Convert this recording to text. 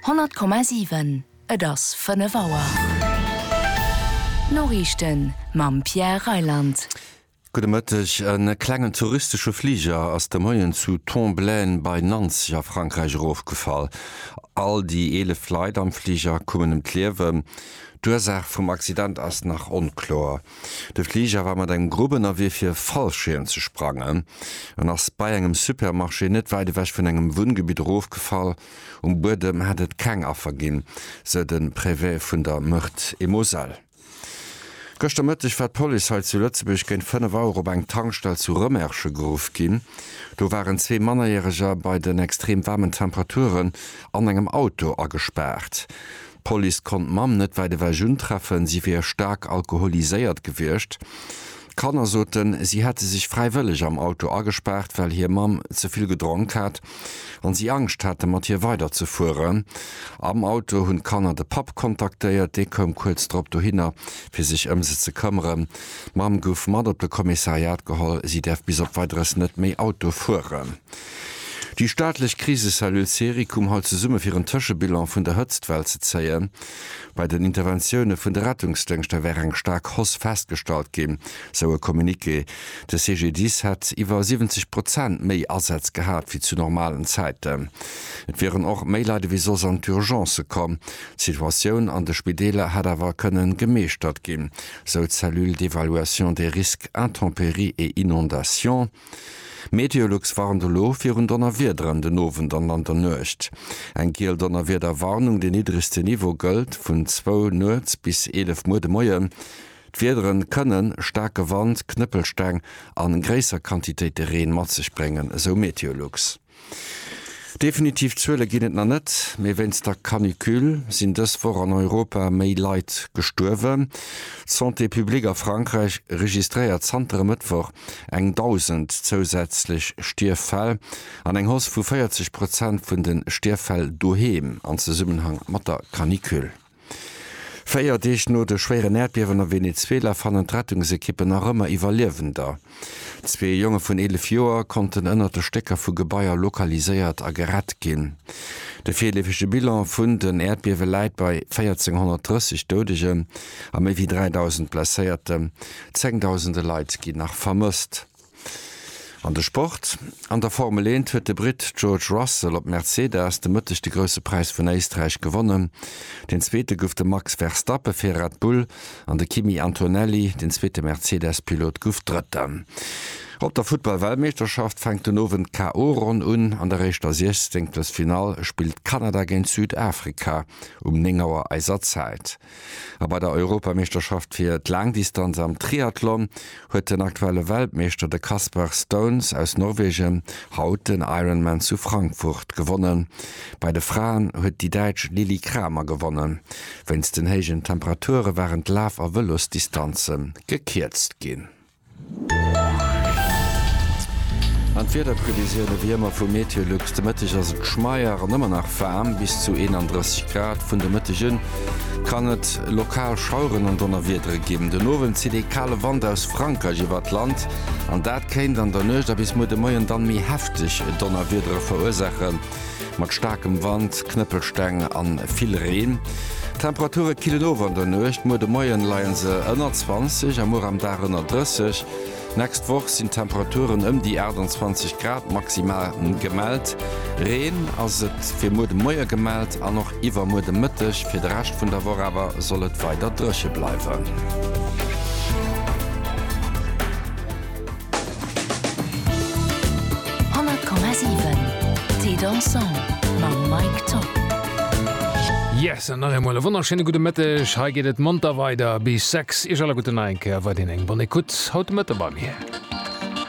100,7 Et ass 5 Auer. D'Noriichten mam Pierre Reyland. Gudde Mëtteg. E klengen touristesche Fliger ass de Moien zu Tomblaine bei Nancy a Frankräich erofgefall. All déi 11 Leit am Fliger kommen ëm d'Liewen. D'Ursaach vum Accident ass nach onkloer. De Fliger war mat engem Grupp ënnerwee fir e Fallschierm ze sprangen an ass bei engem Supermarché net wäit ewech vun engem Wunngebitt erofgefall. Um Buedem hätt et keng Affer ginn, sou de Préfet vun der Meurthe-et-Moselle. Gëschter Mëtteg war d'Police hei zu Lëtzebuerg géint 5 Auer op eng Tankstell zu Rëmerschen geruff ginn. Do waren zwee Mannerjäreger bei den extrem waarmen Temperaturen an engem Auto agespaart. D'Police konnt d'Mamm net wäit ewech untreffen, si wier staark alkoholiséiert gewiescht. D'Kanner soten, si hätte sech fräiwëlleg am Auto agespaart, well hir Mamm ze vill gedronk hat an si Angscht haten, mat hir weiderzefueren. Am Auto hunn d'Kanner de Papp kontaktéiert, dee koum kuerz drop dohinner, fir sech ëm se ze këmmeren. D'Mamm gouf mat op de Kommissariat geholl, si däerf bis op Weideres net méi Auto fueren. Déi staatlech Krisecellule Serie koum haut zesumme fir en Tëschebilan vun der Hëtztwell ze zéien. Bei den Interventioune vun de Rettungsdéngschter wär eng staark Hausse festgestallt ginn, sou e Communiqué. De CGDIS hätt iwwer 70 Prozent méi Asätz gehat wéi zu normalen Zäiten. Et wieren och méi Leit ewéi soss an d'Urgencë komm. D'Situatioun an de Spideeler hätt awer kënnen gemeeschtert ginn, sou d'Cellule d'évaluation des risques intempéries et inondations. Meteolux warnt elo virun Donnerwiederen den Owend an an der Nuecht. Eng giel Donnerwiederwarnung, deen niddregste Niveau, gëllt vun zwou nuets bis 11 Muer de Moien. D'Wiedere kënne staarke Wand, Knëppelsteng a gréisser Quantitéite Reen mat sech bréngen, esou Meteolux. Definitiv Zuele ginn et nach net, mee wéinst der Canicule sinn dës Woch an Europa méi Leit gestuerwen. D'Santé publique a Frankräich registréiert zanter e Mëttwoch eng 1.000 zousätzlech Stierffäll an eng Hausse vu 40 Prozent vun de Stierffäll doheem an Zesummenhang mat der Canicule. Véier Deeg no de schwéieren Äerdbiewen a Venezuela fannen d'Rettungsekippen nach ëmmer Iwwerliewender. Zwee Jonge vun 11 Joer konnten ënnert de Stécker vu Gebaier lokaliséiert a gerett ginn. De virleefege Bilan vun den Äerdbiewe läit bei 1.430 Doudegen a méi wéi 3.000 Blesséierten. Zéngdausende Leit ginn nach vermësst. An de Sport, An der Formel Eent huet de Britt George Russell op Mercedes de Mëtteg de Grousse Präis vun Éisträich gewonnen. Deen Zweete gouf de Max Verstappe fir Red Bull an de Kimi Antonelli, deen zweete Mercedes-Pilot, gouf Drëtten. Op der Futtball-Weltmeeschterschaft fänkt den Owend d'KO-Ronn un. An der éischter Siechzenktelfinall spillt Kanada géint Südafrika um 9 Auer eiser Zäit. A bei der Europameeschterschaft fir d'Laangdistanz am Triathlon huet den aktuelle Weltmeeschter, de Kasper Stauns aus Norwegen, haut den Ironman zu Frankfurt gewonnen. Bei de Fraen huet déi Däitsch Lilli Kramer gewonnen. Wéinst den héijen Temperature waren d'Laf a Vëlosdistanze gekierzt ginn. An d'Wiederprevisioune wéi ëmmer vu Meteolux. De Mëtteg ass et schmeier an ëmmer nach waarm, bis zu 31 Grad. Vun de Mëtteg un kann et lokal Schaueren an Donnerwiedere ginn. Den Owend zitt ee kale Wand aus Frankräich iwwer d'Land an dat kéint an der Nuecht a bis muer de Moien dann méi hefteg Donnerwiedere verursaachen. Mat staarkem Wand, Knëppelsteng an vill Reen. D'Temperature killen of an der Nuecht, muer de Moien leien se ënner 20 a muer am Dag ënner 30. Nächst Woch sinn Temperaturen ëm déi 28 Grad maximal gemellt. Reen ass et fir muer de Moie gemellt an och iwwer muer de Mëtteg. Fir de Rescht vun der Woch awer soll et weider drëche bleiwen. 100,7 Thé dansant mam Mike Top. Yes an nach eemol e wonnerschéine gudde Mëtteg. Hei geet et monter weider bis 6. Iech alleguerten nach eng Kéier weiderhin eng Bonne Écoute haut de Mëtte bei mir.